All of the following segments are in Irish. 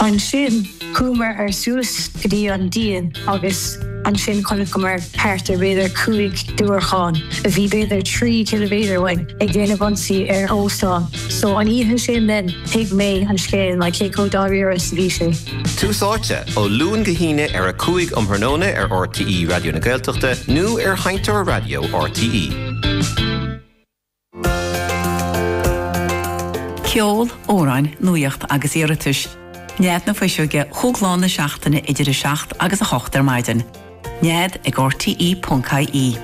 Ansin chuamar ar suas go dtí an díon agus ansin chonaiceamar thart ar b'fhéidir cúig diúracán a bhí b'fhéidir trí chiliméadar uainn ag déanamh ionsaí ar óstán. So an oíche sin then thuig mé an scéal ná cé chomh dáiríre is a bhí sé. Tús áite, ó Luan go hAoine ar a cúig um thráthnóna ar RTÉ Raidió na Gaeltachta nó ar sheinnteoir raidió RTÉ. Ceol, amhráin, nuaíocht agus iarratais. Nead na Fuiseoige chúig lá na seachtaine idir 7 agus 8 ar maidin. Nead ag RTE.ie.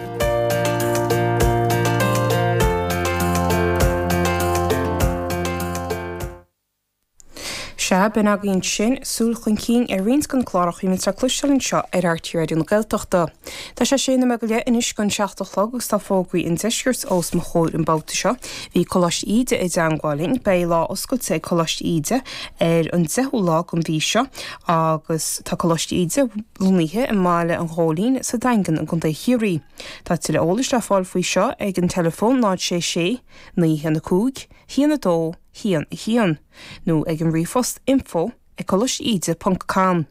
Sea, b'in agaibh ansin, súil chun cinn ar roinnt de na cláracha a bhíonns le cloisteáil anseo ar RTÉ Raidió na Gaeltachta. Tá sé sé nóiméad go leith anois gon 7 a chlog agus tá fógraí an deiscirt os mo chomhair an babhta seo. Bhí Coláiste Íde i dteangmháil linn. Beidh lá oscailte ag Coláiste Íde ar an 10ú lá den mhí seo agus tá Coláiste Íde lonnaithe i mBaile an Ghóilín sa Daingean i gContae Chiarraí. Tá tuilleadh eolais le fáil faoi seo ag an teileafón 066 915 1 2 1 1, nó ag an ríomhphost info ag Coláiste Íde ponc com.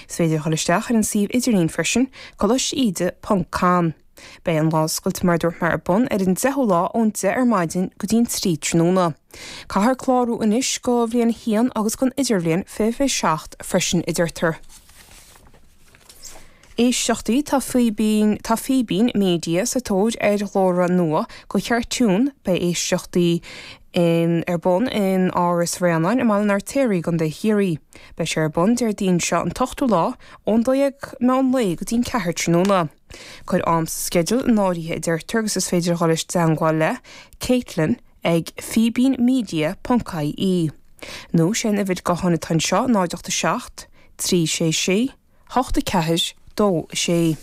Is féidir a dhul isteach ar an suíomh idirlín freisin, Coláiste Íde ponc com. Beidh an lá oscailte mar a dúirt mé ar bun ar an 10ú lá ón 10 ar maidin go dtí an 3 tráthnóna. Caithfear clárú anois go bhliain 1 agus gon idirbhliain fiche fiche seacht freisin a deirtear. Éisteachtaí Tá Fíbín Media sa tóir ar ghlórtha nua go chartún. Beidh éisteachtaí ar bun in Áras Bhréanainn i mBaile an Fheirtéaraigh i gContae Chiarraí. Beidh sé ar bun Déardaoin seo an t-ochtú lá ón dó dhéag meán lae go dtí an ceathair tráthnóna. Cuir am sa sceideal in áirithe a deirtear agus is féidir a dhul i dteangmháil le Caitlin ag fíbínmedia ponc ie. Nó, sé an uimhir gutháin atá anseo, 0 8 7, 3 6 6, hocht a ceathair, dó a sé.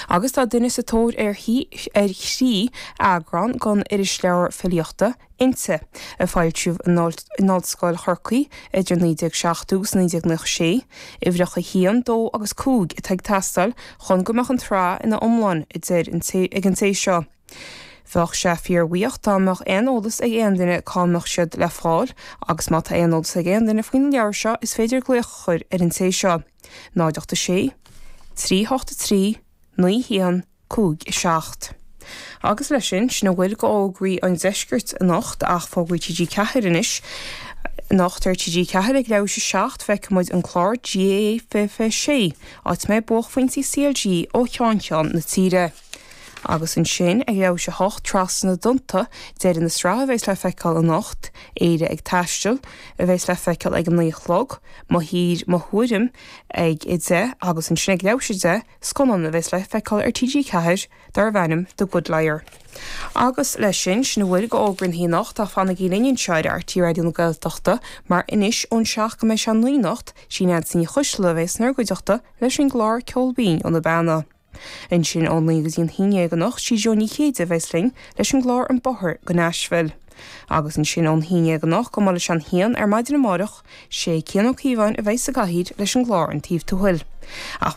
Agus tá duine sa tóir ar thrí eagrán den irisleabhar filíochta, Innti, a foilsíodh in Ollscoil Chorcaí idir 1970 agus 1990. Sé uimhreacha a haon, dó agus cúig, atá ag teastáil chun go mbeadh an tsraith ina iomlán, a deir ag an té seo. Bheadh sé fíorbhuíoch dá mbeadh aon eolas ag aon duine cá mbeadh siad le fáil, agus má tá aon eolas ag aon duine faoi na leabhair seo is féidir glaoch a chur ar an té seo, 086 383 9157. Agus leis sin, sin a bhfuil go fhógraí an Deiscirt anocht, ach fógraí TG4 anois. Anocht ar TG4 ag leathuair tar éis 7 feicfidh muid an clár GAA 2026, áit a mbeidh buaicphointí CLG ó cheann ceann na tíre. Agus ansin ag leathuair tar éis a 8, trasna na dtonnta, deireadh na sraithe a bheas le feiceáil anocht, Éire ag taisteal, a bheas le feiceáil ag a naoi a chlog, Mo Thír Mo Thuairim ag a deich agus ansin ag leathuair tar éis a 10, scannán a bheas le feiceáil ar TG4 darbh ainm The Good Liar. Agus leis sin, sin a bhfuil go Fhógraí an Lae anocht ach fanaigí linn anseo ar RTÉ Raidió na Gaeltachta mar anois ón seacht go mbeidh sé a naoi anocht, sí Neansaí Ní Choisdealbha a bheas in bhur gcuideachta leis an gclár Ceol Binn ó na Beanna. Ansin ón naoi go dtí an haon déag anocht sí Jó Ní Chéide a bheas linn leis an gclár An Bóthar go Nashville. Agus ansin ón haon déag anocht go mba leis an haon ar maidin amáireach, sé Cian Ó Cíobháin a bheas sa gcathaoir leis an gclár An Taobh Tuathail. Ach